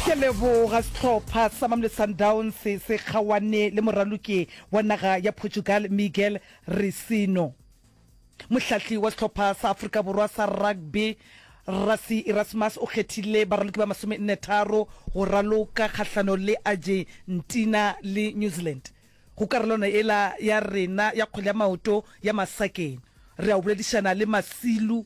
Ke a leboga. Sehlopha sa Mamelodi Sundowns se kgaoane le moraloki wa naga ya Portugal Miguel Risino. Mohlahli wa sehlopha sa Afrika Borwa sa rugby Rassie Erasmus o kgethile baraloki ba masomenne tharo go raloka kgahlano le Argentina le New Zealand go karolwana ela ya rena ya kgwele ya maoto ya masakeng. Re a o boledišana le Masilu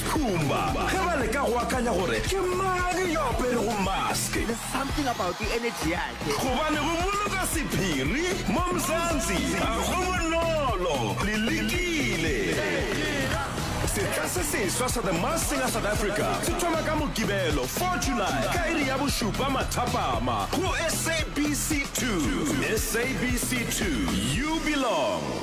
Pumba ge ba leka go akanya gore ke mang yo aperego mask. There's something about the energy yakhe. Gobane go boloka sephiri mo Mzansi ga go bonolo. Le lekile? Setla se seswa sa The Masked Singer South Africa se thoma ka Mokibelo 4 July ka iri ya bošupa mathapama go SABC 2. SABC 2, you belong.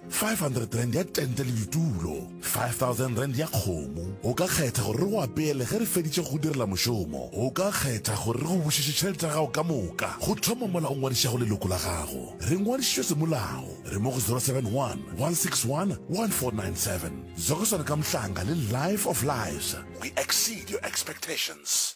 500 rand ya tente le ditulo 5000 rand ya kgomo o ka kgetha gore re go apeele ge re feditše go direla mošomo o ka kgetha gore re go bušetše tšhelete ya gago ka moka go thoma mola o ngwadišago leloko la gago re ngwadišitšwe semolao re mo go 071 161 1497 zokoswana ka mohlanga le life of lives we exceed your expectations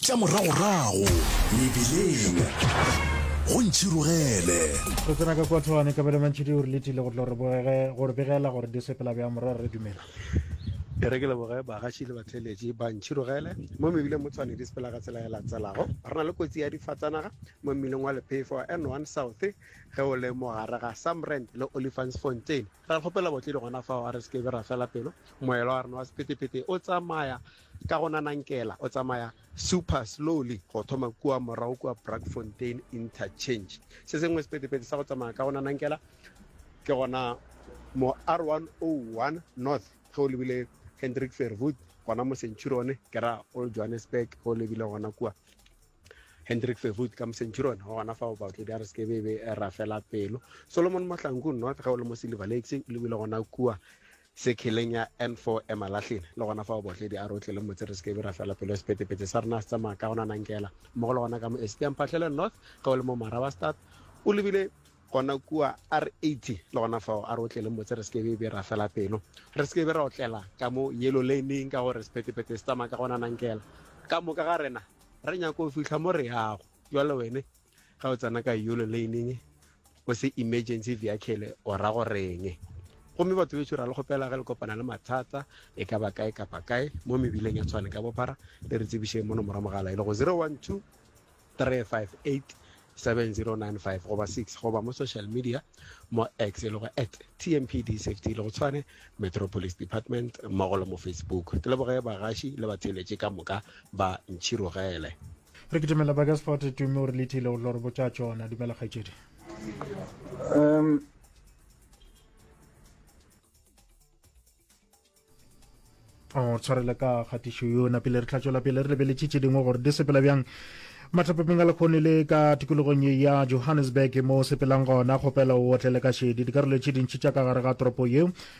Tša moragorago mebileng go ntšhirogele. Re tsena ka kua thogane kabelo mantšhi di gore letile go tlo gore begela gore di sepela bjang morwa re dumela. E re ke leboge bagaši le batlheletši ba ntšhirogele. Mo mebileng mo Tshwane di sepela ka tsela e latselago. Re na le kotsi ya difatsanaga mo mmileng wa Lephefo wa N1 South ge o le mo gare ga Samrand le Olifantsfontein. Re a kgopela baotledi gona fao a re se ke be ra fela pelo. Moelwa wa rena wa sephethephethe o tsamaya Ka go na Nankela o tsamaya super slowly go thoma kua morago kua Brackfontein Interchange. Se sengwe sepetepete sa go tsamaya ka go na Nankela ke gona mo R101 North ge o lebile Hendrik Verwoerd gona mo Centurion ke ra Old Johannesburg ge o lebile gona kua Hendrik Verwoerd ka mo Centurion go gona fa o batle di a re se ke be be ra fela pelo Solomon Mohlanku North ge o le mo Silver Lakes o lebile gona kua Sekheleng ya N4 Emalahleni, le gona fao Botledi a re o tlile motse re se ke be ra fela pelo sepetepete sa rena se tsamaya ka go nanankela mmogo le gona ka mo Esite ya Mphahlele North ge o le mo Marabastad o lebile gona kua R80 le gona fao a re o tlile motse re se ke be ra fela pelo re se ke be ra otlela ka mo Yellow Lane-ing ka gore sepetepete se tsamaya ka go nanankela ka moka ga rena re nyaka go fihla mo re yago jwale wene Ga o tsena ka yolo lane-ing o se emergency vehicle o ra go reng? Gomme batho beso ra le kgopela ge le kopana le mathata e ka ba kae kapa kae mo mebileng ya tshwane ka bophara le re tsebišeng mo nomoro mogala e le go 012 358 7095 goba 6 goba mo social media mo x e le go at tmpd safety le go tshwane metropolis department mmogo le mo facebook ke leboge bagaši le batheeletše ka moka ba ntšhirogele re ke dumela baka sport tume o re lethile o tlo re botša tsona dumela kgaitsedi um o tshwarele ka kgatišo yona pele re tlhatswela pele re lebeletše tše dingwe gore di sepela bjang matlhapepeng a lekgone le ka tikologong ye ya johannesburg mo sepelang gona kgopela o otlele ka šedi dikarolo tše dintši tša ka gare ga toropo yeo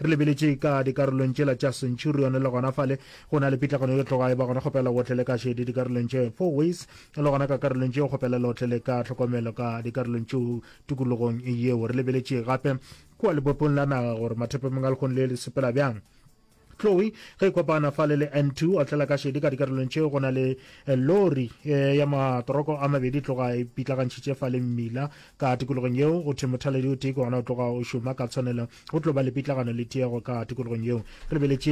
Re lebeletše ka dikarolong tšela tša Centurion le gona fale. Go na le pitlagano yo tloga e ba gona kgopela o tlele ka šedi dikarolong tše four ways le gona ka karolong tše kgopela lo tlele ka tlhokomelo ka dikarolong tšeo tikologong yeo. Re lebeletše gape kua lebopong la naga gore mathepemeng a lekgong le le sepela bjang. Chloe ge e kopana fale le N two o tlela ka šedi ka dikarolong tše go na le lori ya matoroko a mabedi tloga e pitlagantšhitše fale mmila Ka tikologong yeo, go thwe mothaladi o tee ke gona o tloga o šoma ka tshwanelo. Go tlo ba le pitlagano le tiego ka tikologong yeo. Re beletše.